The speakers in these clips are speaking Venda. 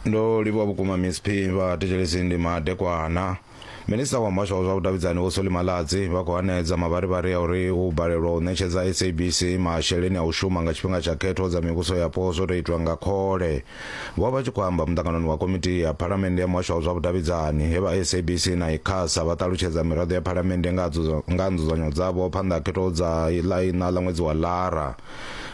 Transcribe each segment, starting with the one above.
ndo livhuwa vhukuma miss p vha thetshelesi ndi madekwana minista wa muhasho wa zwa vhudavhidzani vho soli maladzi vha khou hanedza mavharivhari ya uri u balelwa u ṋetshedza sabc masheleni a u shuma nga tshifhinga tsha khetho dza mivhuso yapo zwo tou itwa nga khole vho vha tshi khou amba muṱanganoni wa komiti ya phalamennde ya muhasho wa zwa vhudavhidzani he vha sabc na icasa vha ṱalutshedza miraḓo ya phalamennde nga ha dzudzo- nga ha nzudzanyo dzavho phanḓa ha khetho dza ḽa iṋa ḽa ṅwedzi wa lara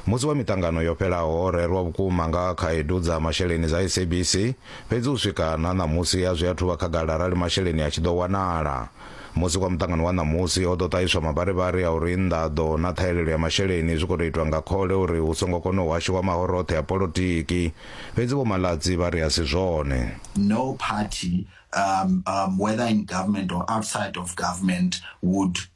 Musi wa miṱangano yo fhelaho ho rerwa vhukuma nga khaedu dza masheleni dza SABC, fhedzi u swika na ṋamusi a zwi athu vha khagala arali masheleni a tshi ḓo wanala. Musi kwa muṱangano wa ṋamusi ho ḓo ṱahiswa mavharivhari a uri nḓaḓo na ṱhahelelo ya masheleni zwi khou tou itwa nga khole uri hu songo kona u hashiwa mahoro oṱhe a polotiki, fhedzi Vho Maladzi vha ri a si zwone. No party, um, um, whether in government or outside of government would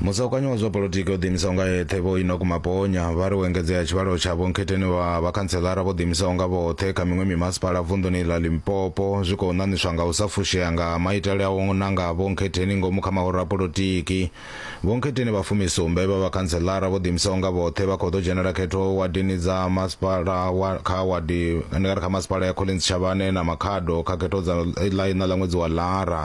Musaukanyi wa zwa polotiki o ḓiimisaho nga eṱhe Vho Enoch Maponya vha ri u engedzea ha tshivhalo tsha vhonkhetheni vha vhakhantseḽara vho ḓiimisaho nga vhoṱhe kha miṅwe mimasipala vunḓuni ḽa Limpopo zwi khou ṋaṋiswa nga u sa fushea nga ha maitele a u nanga vhonkhetheni ngomu kha mahoro a polotiki. Vhonkhetheni vha fumisumbe vha vhakhantseḽara vho ḓiimisaho nga vhoṱhe vha khou ḓo dzhenela khetho wadini dza masipala wa kha wadi ndi nga ri kha masipala ya Collins Chavhane na Makhado kha khetho dza ḽa iṋa ḽa ṅwedzi wa Lara.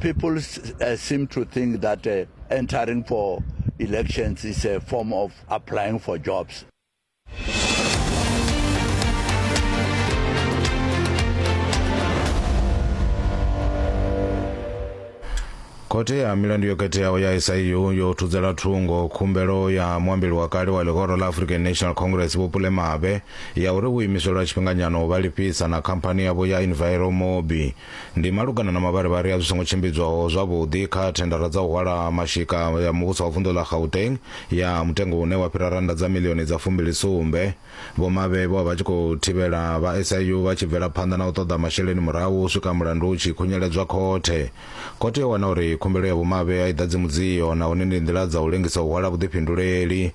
people uh, seem to think that uh, entering for elections is a form of applying for jobs. khothe ya milandu yo khetheaho ya siu yo thudzela thungo khumbelo ya muambeli wa kale wa ḽihoro ḽa african national congress vho pule mabe ya uri vhuimiselo ha tshifhinganyana u vha lifhisa na khamphani yavho ya enviromobi Ndi malugana na mavharivhari a zwi songo tshimbidzwaho zwavhuḓi kha thendara dza u hwala mashika ya muvhuso wa vunḓu ḽa Gauteng ya mutengo une wa fhira rannda dza miḽioni dza fumbili sumbe. Vho Mabee vho vha vha tshi khou thivhela vha SIU vha tshi bvela phanḓa na u ṱoḓa masheleni murahu u swika mulandu u tshi khunyeledzwa khothe. Khothe yo wana uri khumbelo ya Vho Mabee a i ḓadzi mudzio nahone ndi nḓila dza u lengisa u hwala vhuḓifhinduleli.